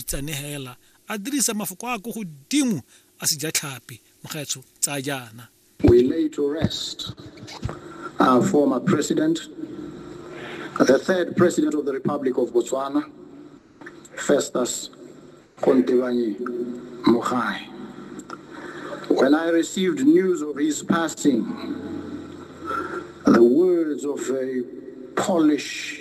Itsanegela a dirisa mafoko a a ko godimo a sejatlhapi, Mokgetsho, tsaya jaana. We lay to rest our former president, the third president of the Republic of Botswana, Festus Kontebanyi Mogae. When I received news of his passing, the words of a Polish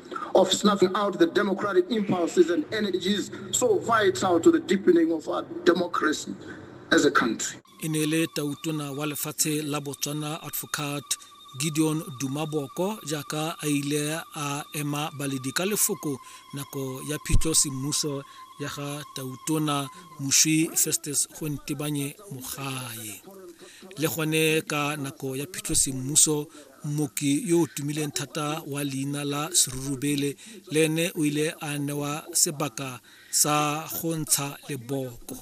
of snuffing out the democratic impulses and energies so vital to the deepening of our democracy as a country. e ne le tautona wa lefatshe la botswana advocate gideon dumaboko jaaka a ile a ema baledi ka lefoko nako ya phitlho semmuso ya ga tautona moswi festus gontebanye mogae le gone ka nako ya phitlho semmuso Mmoki yo o tumileng thata wa leina la Serurubele le ene o ile a newa sebaka sa go ntsha leboko.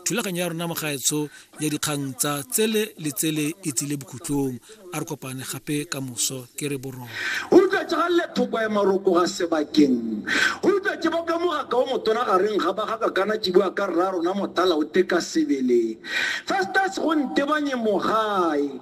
Thulaganyo ya rona mogaetsho ya dikgang tsa tsele le tsele e tsile bokhutlong a re kopane gape ka moso ke re borona. Utlwa tsa galle thoko ya maroko ga sebakeng. Utlwa tse baka mogaka o motona gareng ga ba ga kakana tšibua ka rra rona motala o teka sebele. Festus go ntebanye mogae.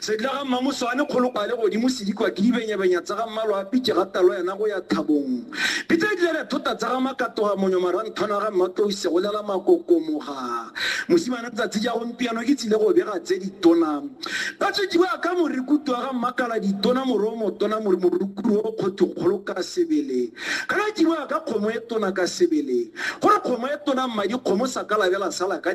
Sedila ga Mmamosoane kgolokwale godimo sedikwa ke dibenyabenya tsa ga mmalwa a pitše ga talo yena go ya thabong. Pitse e dile re thota tsa ga makatoga monyo maranthwana ga mmatlouse go lela makokomoga. Mosimane tsatsi ja gompiano ke tsile go bega tse ditona. Ba tswetši ba ka morikutu wa ga mmakala ditona moro o motona more morukuru o kgotho kgolo ka sebele. Ka ga tšibo ya ka kgomo e tona ka sebele. Gore kgomo e tona mmadi kgomo sa ka labela sala ka